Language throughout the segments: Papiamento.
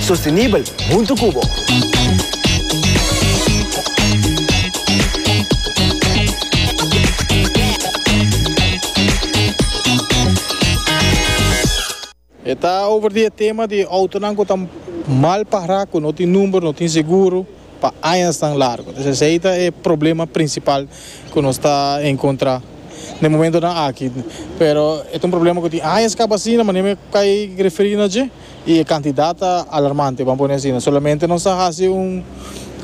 Sostenibel huntu cu bo. E ta over di e tema di autonan cu ta mal pará, cu no tin number, no tin seguro pa añasnan largo. Entonces esei ta e problema principal cu nos ta encontrá na e momentonan aki. Pero e ta un problema cu tin añas caba asina, manera mi a kai referi na dje. Y e cantidad ta alarmante, ban pone asina. Solamente nos a haci un,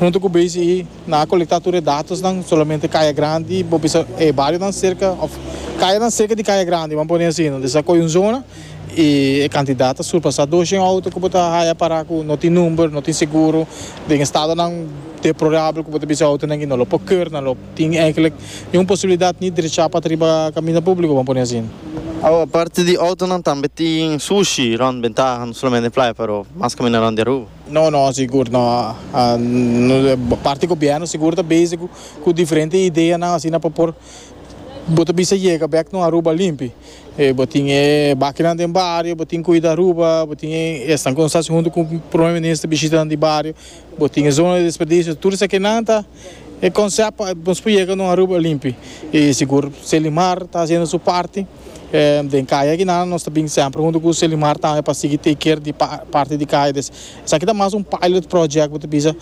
hunto cu BCE, nan a colecta tur e datosnan, solamente Caya Grandi, bo bisa e barionan cerca, of cayanan cerca di Caya Grandi, ban pone asina. Nos a coge un zona y e cantidad ta surpasa doshen auto cu bo ta haya para cu no tin number, no tin seguro, den estadonan deplorable cu bo ta bisa auto nan y no lo por ker, nan lo. Tin eigenlijk ni un posibilidat ni drechá pa ta riba kaminda públiko, bo pone asin. Awa, parti di outonan tambe tin sushi rònt bentaha, no solamente playa pero mas kaminda rònt di Aruba. No, no, sigur no. Parti gobièrnu sigur ta bezig ku diferente ideanan asina pa por bo ta bisa yega bèk no Aruba limpi. Bo tin e bakinan den bario, bo tin Kuida Aruba, bo tin esnan ku nos hasi huntu ku Prome Minister bishitanan di bario, bo tin e zona di desperdisio, tur esaki nan ta. E konsèp pa nos por yega na un Aruba limpi i sigur. Selimar ta hasiendo su parti den kaya akinan. Nos ta bin semper huntu ku Selimar tambe pa sigui take care di parti di kaya. Entonces esaki ta mas un pilot project bo ta bisa.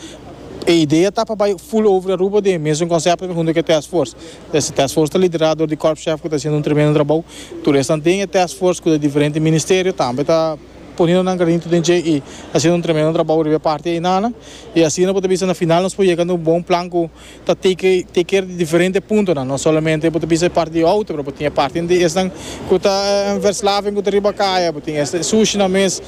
E idea ta pa bai full over Aruba den e mesun konsèp huntu ku e task force. Entonces e task force ta liderá dor di Corp Chef ku ta hasiendo un tremendo trabou. Tur esnan den e task force ku ta di diferente ministerio tambe ta. Poniendo nan granito den dje y haciendo un tremendo trabao riba e parti einanan. Y asina bo ta bisa na final nos por yega na un bon plan cu ta take take care di diferente puntonan. No solamente bo ta bisa e parti di auto pero bo tin e parti di esnan cu ta verslaving cu ta riba caya, bo tin este sushinan mes,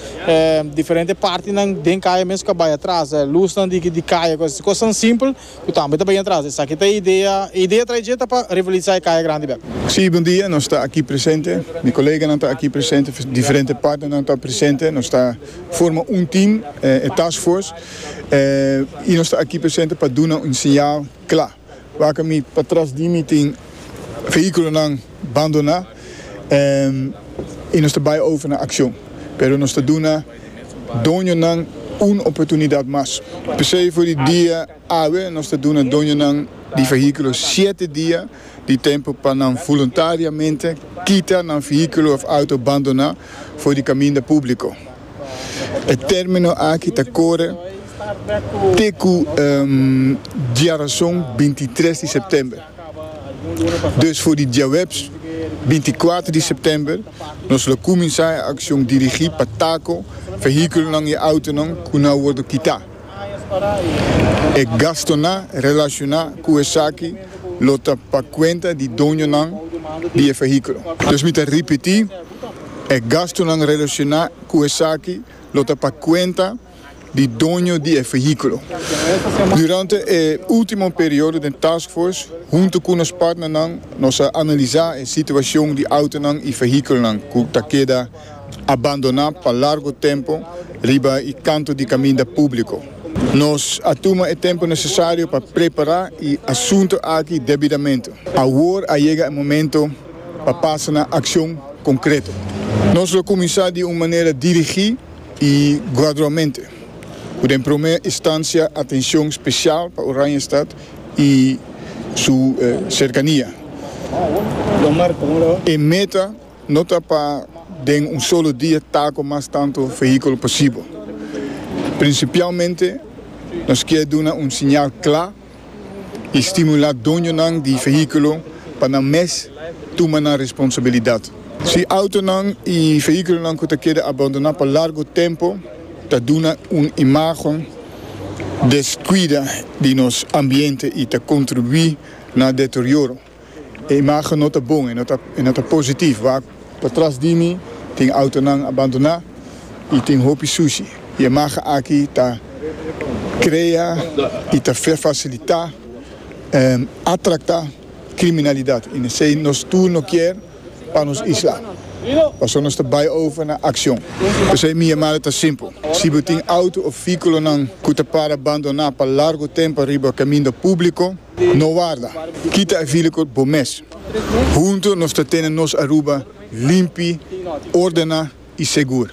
diferente partinan den caya mes cu a bay atras, lusnan di caya, cosnan simpel. Cu tambe ta bay atras. Esaki ta e idea. E idea trae dje ta pa revitaliza e caya grandi bek. Sí, bon dia. Nos ta aki presente. Mi coleganan ta aki presente. Diferente partnernan ta presente. Nos ta forma un team, e task force. Y nos ta aki presente pa duna un señal cla. Wak mi patras di mi tin vehiculonan. Bandoná i nos ta bai over na akshon, pero nos ta duna doñonan un oportunidat mas. P'esei for di dia awe nos ta duna doñonan di fehíkulo shete dia di tempu pa nan voluntariamente kita nan fehíkulo òf outo bandoná for di kaminda públiko. E término aki ta kore te ku diarason bintitres di sèptèmber. Dus for di diahuebs binti kuater di sèptèmber nos lo kuminsá e akshon dirigí pa tako vehíkulonan i outonan ku na wòrdu kitá. E gastunan relashoná ku esaki lo ta pa kuenta di doñonan di e vehíkulo. Dus mi ta ripití, e gastunan relashoná ku esaki lo ta pa kuenta. di doño di e vehiculo. Durante e ultimo periodo den Task Force, hunto cu nos partnernan, nos a analisa e situacion di autonan y vehiculonan cu ta keda abandona pa largo tempo riba e canto di caminda publico. Nos a tuma e tempo necesario pa prepara e asunto aki debidamente. Awor a yega e momento pa pasa na accion concreto. Nos lo cuminsa di un manera dirigi I gradualmente, cu den prome instancia atencion special pa Oranjestad i su cercania. E meta no ta pa den un solo dia ta cu mas tanto vehiculo posibel. Principialmente nos kier duna un siñal cla i stimulá doñonan di vehíkulo pa nan mes tuma nan responsabilidat. Si outonan i vehíkulonan ku ta keda abandoná pa largu tempu ta duna un imágen deskuida di nos ambiente i ta kontribuí na deterioro, E imagen no ta bon, e no ta positief wak. Patras di mi tin autonan abandoná i tin hopi sushi. E imagen aki ta krea i ta fasilitá atraktá kriminalidat i nesei nos tur no kier pa nos isla. Paso nos ta bai over na akshon. P'esei mi yamada ta simpel. Si bo tin auto of vehikulonan ku ta para abandoná pa largu tempu riba kaminda públiko, No warda, kita e vilikot bo mes. Huntu nos ta tene nos Aruba limpi, ordena i segur.